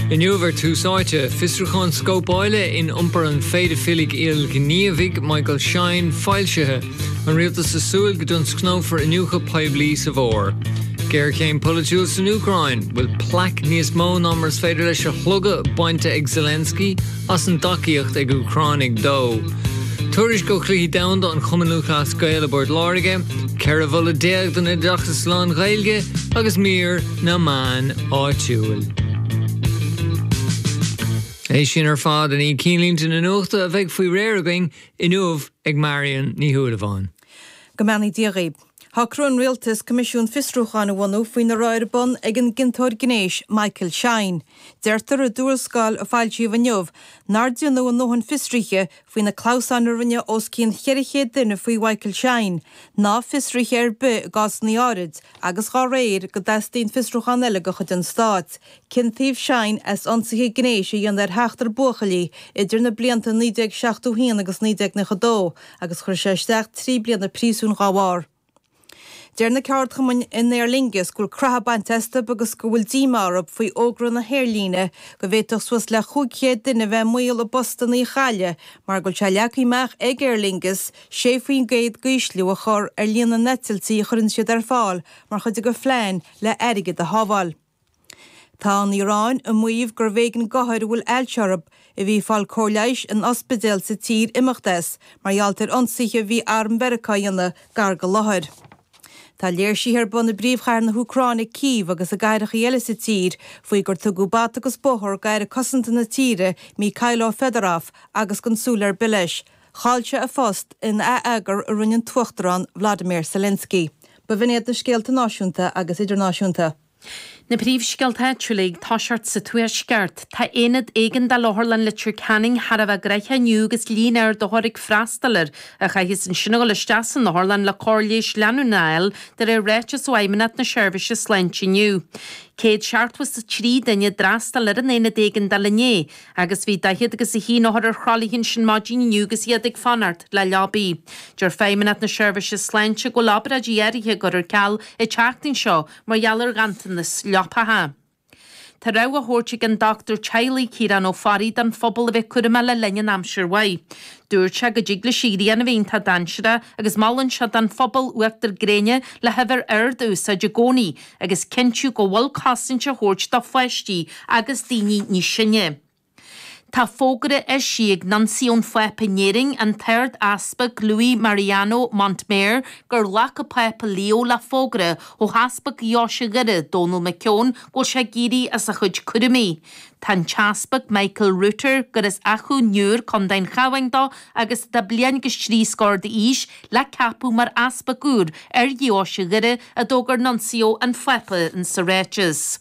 Inniu ar Tús Áite, fiosrúchán scóipeála in iompar an phéidifiligh ilghníomhaigh Michael Shine foilsithe, an rialtas ag súil go dtionscnófar iniúchadh poiblí sa bhfómhar, géarchéim polaitiúil san Úcráin, bhfuil plaic níos mó ná mar is féidir leis a shlogadh bainte ag Zelensky, as an dtacaíocht ag Úcránaigh dó. Tuairisc ó Chluichí Domhanda an Chumainn Lúthchleas Gael i bPort Láirge, 14 mholadh don Oideachas lán-Ghaeilge agus mír na meán áitiúil. É sin ar fad i ndiaidh cinnlínte na nuachta a bheidh faoi réir againn inniu ag Marian Ní Shúilleabháin. Go mbeannaí Dia dhaoibh. Shocraigh an Rialtas Coimisiún Fiosrúcháin a bhunú faoina raibh ar bun ag an gciontóir gnéis Michael Shine. Deirtear i dtuarascáil a foilsíodh inniu nár déanadh a ndóthain fiosruithe faoi na clamhsáin a rinne os cionn 400 duine faoi Mhichael Shine, ná fiosruithe ar bith i gcásanna áirid, agus dhá réir, go dteastaíonn fiosrúchán eile de chuid an Stáit. Ciontaíodh Shine as ionsaithe gnéis a dhéanamh ar sheachtar buachaillí idir na blianta 1971 agus 1992 agus chuir sé isteach trí bliana príosúin dá bharr. Deir na ceardchumainn in Aer Lingus go bhfuil creathadh bainte astu agus go bhfuil díomá orthu faoi fhógra na haerlíne go bhféadfadh suas le 500 duine bheith i mbaol a bpostanna a chailleadh mar go bhfuil sé leagtha amach ag Aer Lingus 6 faoin gcéad d'ísliú a chur ar líon na n-eitiltí a chuireann siad ar fáil mar chuid de phlean le airgead a shábháil. Tá an Iaráin ag maíomh gurbh éigean d'othair a bhfuil ailse orthu a bhí ag fáil cóir leighis in ospidéil sa tír imeacht as mar gheall ar ionsaithe a bhí Arm Mheiriceá a dhéanamh gar don láthair. Tá léirsithe ar bun i bpríomhchathair na hÚcráine, Cív, agus i gcathrachaí eile sa tír faoi gur tugadh bata agus bóthar d'Aire Cosanta na tíre, Mykhailo Fedorov, agus gan súil ar bith leis. Chaill sé a phost in atheagar a rinne an tUachtarán Vladimir Zelensky. B'in iad na scéalta náisiúnta agus idirnáisiúnta. Na Príomhscéalta Áitiúla Ag Toiseacht sa Tuaisceart Tá aonad éigeandála Otharlann Leitir Ceanainn thar a bheith gnaitheach inniu agus líon ard othar ag freastal air a chaithfidh ansin a dhul isteach san otharlann le cóir leighis leanúnach a fháil de réir ráiteas ó Fheidhmeannacht na Seirbhíse Sláinte inniu. 163 duine a d'fhreastail ar an aonad éigeandála inné Agus bhí daichead agus a haon othar ar thralaithe ansin maidin inniu agus iad ag fanacht le leabaí. Deir Feidhmeannacht na Seirbhíse Sláinte go bhfuil obráidí áirithe á gcur ar ceal an tseachtain seo mar gheall ar ghanntanas leapacha. Tá rabhadh á thabhairt ag an dochtúir teaghlaigh Ciarán Ó Fearraigh don phobal a bheith cúramach le linn an aimsir mhaith. Dúirt sé go dtig leis an ghrian a bheith iontach dainséarach agus molann sé don phobal uachtar gréine le huimhir ard a úsáid i gcónaí agus cinntiú go bhfuil cosaint á thabhairt do pháistí agus daoine níos sine. Tá fógra eisithe ag Nuncio an Phápa in Éirinn, an tArd-Easpag Luis Mariano Montemayor, gur ghlac an Pápa Leo le fógra ó Easpag Dheoise Dhoire, Dónall Mac Eoin, go bhfuil sé ag éirí as a chuid cúraimí. Tá an tEaspag Michael Router, gur as Achadh an Iúir, Co. an Chabháin dó agus atá bliain agus trí scór d'aois, le ceapadh mar Easpag úr ar Dheoise Dhoire, a d'fhógair Nuncio an Phápa sa ráiteas.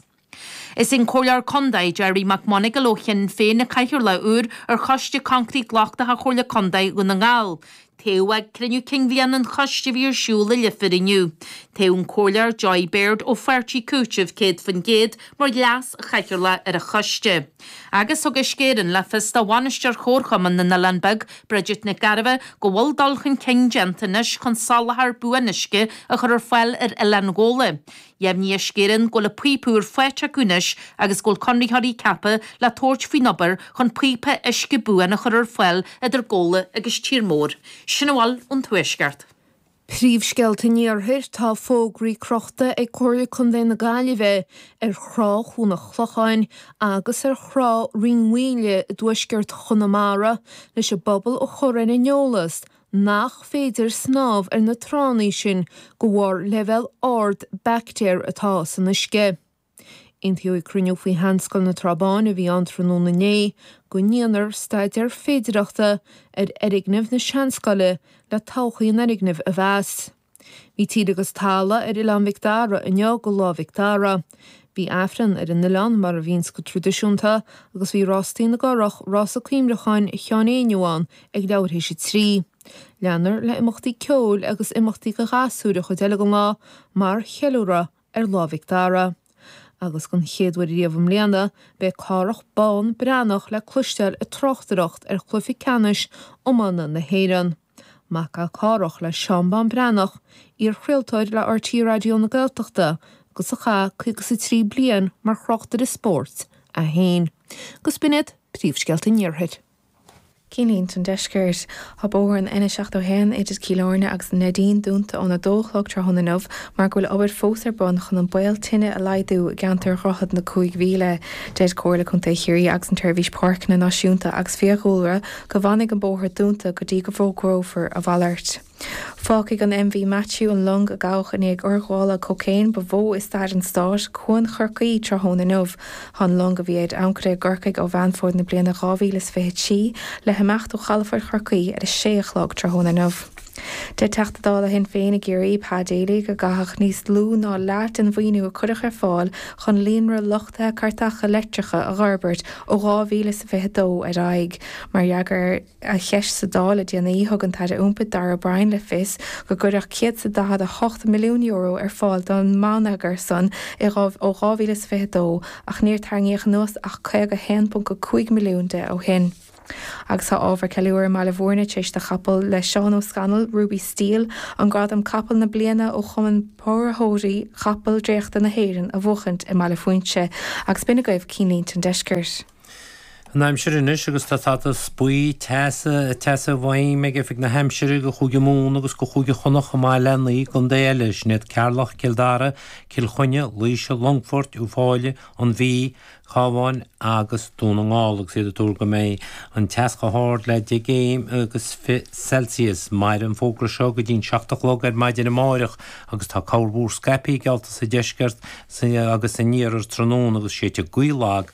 Is é an Comhairleoir Contae Gerry Mac Monagail ó Shinn Féin an Cathaoirleach úr ar Choiste Coincréite Lochtach Chomhairle Contae Dhún na nGall. Toghadh ag cruinniú cinn bhliana an choiste a bhí ar siúl i Leifear inniu, toghadh an Comhairleoir Joy Beard ó Pháirtí Cúitimh 100% mar leaschathaoirleach ar an choiste, agus thug Uisce Éireann le fios do Bhainisteoir Chomharchumann na nOileán Beag, Bridget Nic Gairbheith, go bhfuil dul chun cinn déanta anois chun soláthar buan uisce a chur ar fáil ar Oileán Ghabhla. Dheimhnigh Uisce Éireann go bhfuil an píopa úr faighte acu anois agus go bhfuil conraitheoirí ceaptha le tabhairt faoin obair chun píopa uisce buan a chur ar fáil idir Gabhla agus Tír Mór. Sin a bhfuil ón Tuaisceart. Príomhscéalta an Iarthair Tá fógraí crochta ag Comhairle Contae na Gaillimhe ar thrá Chuan an Chlocháin agus ar thrá Rinn Mhaoile i dtuaisceart Chonamara leis an bpobal a chur ar an eolas nach féidir snámh ar na tránna sin de bharr leibhéal ard baictéar atá san uisce. Aontaíodh ag cruinniú faoi Sheanscoil na Trá Báine a bhí ann tráthnóna inné go ndéanfar staidéar féidireachta ar fhoirgneamh na Seanscoile le todhchaí an fhoirgnimh a mheas. Bhí tír agus talamh ar Oileán Mhic Dara inniu do Lá Mhic Dara. Bhí Aifreann ar an oileán mar a bhíonns go traidisiúnta agus bhí Rástaí na gCurrach, rása cuimhneacháin Sheáin Éinniú ann ag leathuair tar éis a trí. Leanfar le imeachtaí ceoil agus imeachtaí do ghasúir an chuid eile den lá mar cheiliúradh ar Lá Mhic Dara. Agus den chéad uair riamh i mbliana, beidh Cárthach Bán Breathnach le cloisteáil ag tráchtaireacht ar Chluiche Ceannais Iomána na hÉireann. Mac é Cárthach le Seán Bán Breathnach, iar-chraoltóir le RTÉ Raidió na Gaeltachta agus a chaith caoga is a trí bliain mar thráchtaire spóirt é féin. Agus b'in iad Príomhscéalta an Iarthair. Cinnlínte an Deiscirt. Tá bóthar an N71 idir Cill Airne agus an Neidín dúnta ón 2 a chlog tráthnóna inniu mar go bhfuil obair fós ar bun chun an baol tine a laghdú i gceantar Dhroichead na Cúig Mhíle. Deir Comhairle Contae Chiarraí agus an tSeirbhís Páirceanna Náisiúnta agus Fiadhúlra go bhfanfaidh an bóthar dúnta go dtí go bhfógrófar a mhalairt. Fágfaidh an MV Matthew an long a gabhadh i ndiaidh urghabhála cócaoin ba mhó i stair an stáit, Cuan Chorcaí, tráthnóna inniu. Tá an long, a bhí ar ancaire i gCorcaigh ó Mheán Fómhair na bliana 2023, le himeacht ó chalafort Chorcaí ar a sé a chlog tráthnóna inniu. Deir Teachta Dála Shinn Féin i gCiarraí, Pa Daly, gur caitheadh níos lú ná leath den mhaoiniú a cuireadh ar fáil chun líonra luchtaithe cairteacha leictreacha a fhorbairt ó 2022 ar aghaidh mar fhreagra ar cheist sa Dáil le déanaí, thug an tAire Iompair Darragh O'Brien le fios gur cuireadh €148 milliún ar fáil don mbonneagar san ó 2022 ach níor tarraingíodh anuas ach 51.5 milliún de ó shin. Agus tá ábhar ceiliúrtha i mBaile Mhúirne tar éis do chapall le Seán Ó Scanaill, Ruby Steel, an gradam Capall na Bliana ó Chumann Póraitheoirí Capall Dréachta na hÉireann a bhuachaint i mBaile Phúinse agus b'in agaibh cinnlínte an Deiscirt. An aimsir anois agus tá stádas buí teasa i bhfeidhm ag Oifig na hAimsire do Chúige Mumhan agus do Chúige Chonnacht chomh maith le naoi gcontae eile, sin iad Ceatharlach, Cill Dara, Cill Chainnigh, Laoise, Longfort, Uíbh Fhailí, An Mhí, Cabhán agus Dún na nGall agus iad ag tuar go mbeidh an teas chomh hard le deich gcéim agus fiche Celsius. Mairfidh an fógra seo go dtí'n seacht a chlog ar maidin amárach agus tá ceathanna móra scaipthe geallta sa deisceart agus san iarthar tráthnóna agus séidfidh gaoth lag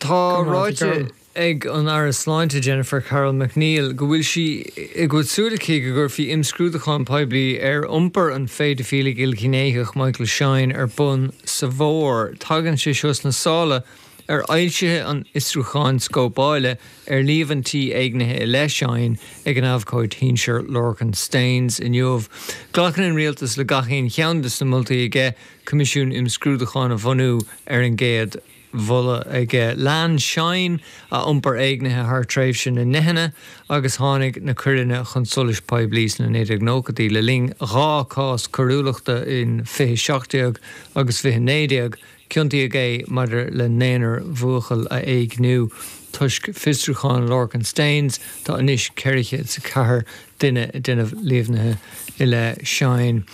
Tá ráite ag an Aire Sláinte Jennifer Carroll MacNeill go bhfuil sí go bhfuil súil aici go gcuirfí imscrúdúchán poiblí ar iompar an phéidifíleach ilghnéitheach Michael Shine ar bun sa bhfómhar. Tagann sé seo sna sála ar fhoilsiú an fhiosrúcháin scóipeála ar líomhaintí éignithe i leith Shine ag an abhcóide sinsir Lorcan Staines inniu. Glacann an Rialtas le gach aon cheann des na moltaí aige. Coimisiún Imscrúdúcháin a bhunú ar an gcéad mholadh aige. Lean Shine an iompar éignithe thar tréimhse na ndeicheanna agus tháinig na coireanna chun solais poiblí sna 1990idí le linn dhá chás coiriúlachta in 2017 agus 2019. Ciontaíodh é maidir le naonúr buachaill a éigniú. Toisc fiosrúchán Lorcan Staines, tá anois 404 duine ag déanamh líomhaintí i leith Shine.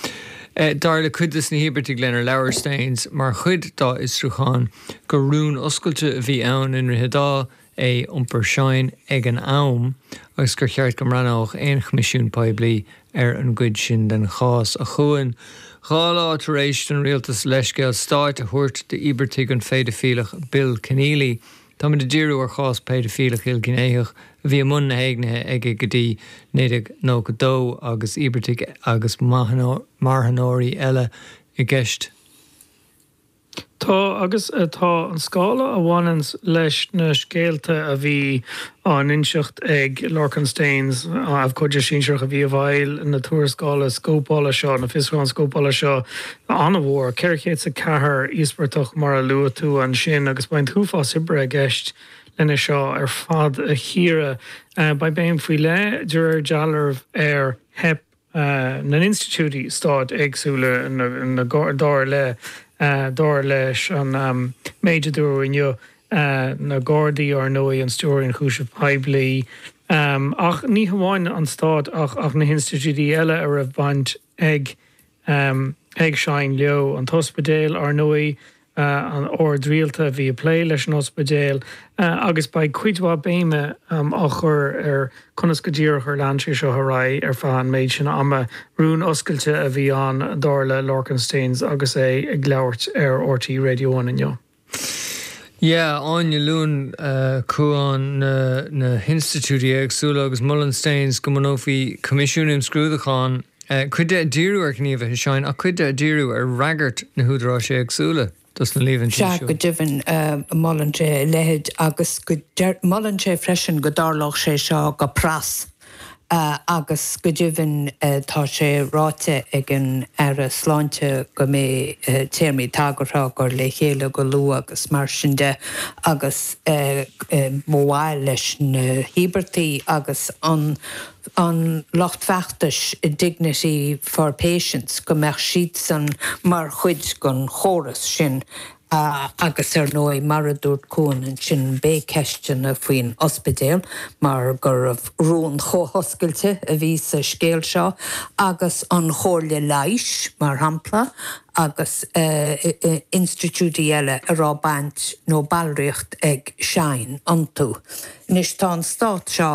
Dar le cuid des na híobartaigh lenar labhair Staines mar chuid dá fhiosrúchán gur rún oscailte a bhí ann i nDroichead Átha é iompar Shine ag an am agus gur cheart go mbreathnódh aon choimisiún poiblí ar an gcuid sin den chás Tagann dhá lá tar éis don rialtas leithscéal stáit a thabhairt d'íobartaigh an phéidifíleach Bill Kenneally. Táimid ag díriú ar chás péidifileach ilghnéitheach a bhí i mbun na n-éignithe aige go dtí 1992 agus íobartaigh agus marthanóirí eile i gceist. Tá agus tá an scála a bhaineann leis na scéalta a bhí á n-inseacht ag Lorcan Staines, abhcóide sinsearach a bhí i bhfeighil na tuarascála scóipeála seo, na fiosrúcháin scóipeála seo, an-mhór, 400 is a ceathair íospartach mar a luaigh tú ansin, agus beidh an t-uafás oibre i gceist lena seo ar fad a chíoradh. Beidh béim faoi leith, de réir dealraimh, ar theip na n-institiúidí stáit éagsúla, dar le, dar leis an méid a dúradh inniu, na Gardaí, ár ndóigh, an Stiúrthóir Ionchúiseamh Poiblí, ach ní hamháin an stát ach na hinstitiúidí eile a raibh baint ag ag Shine leo, an t-ospidéal, ar ndóigh, an t-ord rialta a bhí ag plé leis an ospidéal, agus beidh cuid mhaith béime á cur ar conas go díreach ar lean sé seo ar aghaidh ar feadh an méid sin ama. Rún oscailte a bhí ann, dar le Lorcan Staines agus é ag labhairt ar RTÉ Radio One inniu. Yeah, Áine, luann Cuán na hinstitiúidí éagsúla agus molann Staines go mbunófaí coimisiún imscrúdúcháin, cuid de ag díriú ar ghníomhartha Shine ach cuid de ag díriú ar fhreagairt na húdaráis éagsúla dos na líomhaintí seo. Sea, go deimhin, molann sé a leithéid agus molann sé freisin go dtarlódh sé seo go pras. agus go deimhin tá sé ráite ag an Aire Sláinte go mbeidh téarmaí tagartha á gcur le chéile go luath agus mar sin de agus ba mhaith leis na híobartaigh agus an lucht feachtais Dignity for Patients go mbeadh siadsan mar chuid den phróiseas sin. ha, agus ar ndóigh, mar a dúirt Cuán ansin, beidh ceisteanna faoin ospidéal, mar gurbh rún chomh hoscailte a bhí sa scéal seo, agus an chomhairle leighis, mar shampla, agus institiúidí eile a raibh baint nó ballraíocht ag Shine iontu. Anois, tá an stát seo.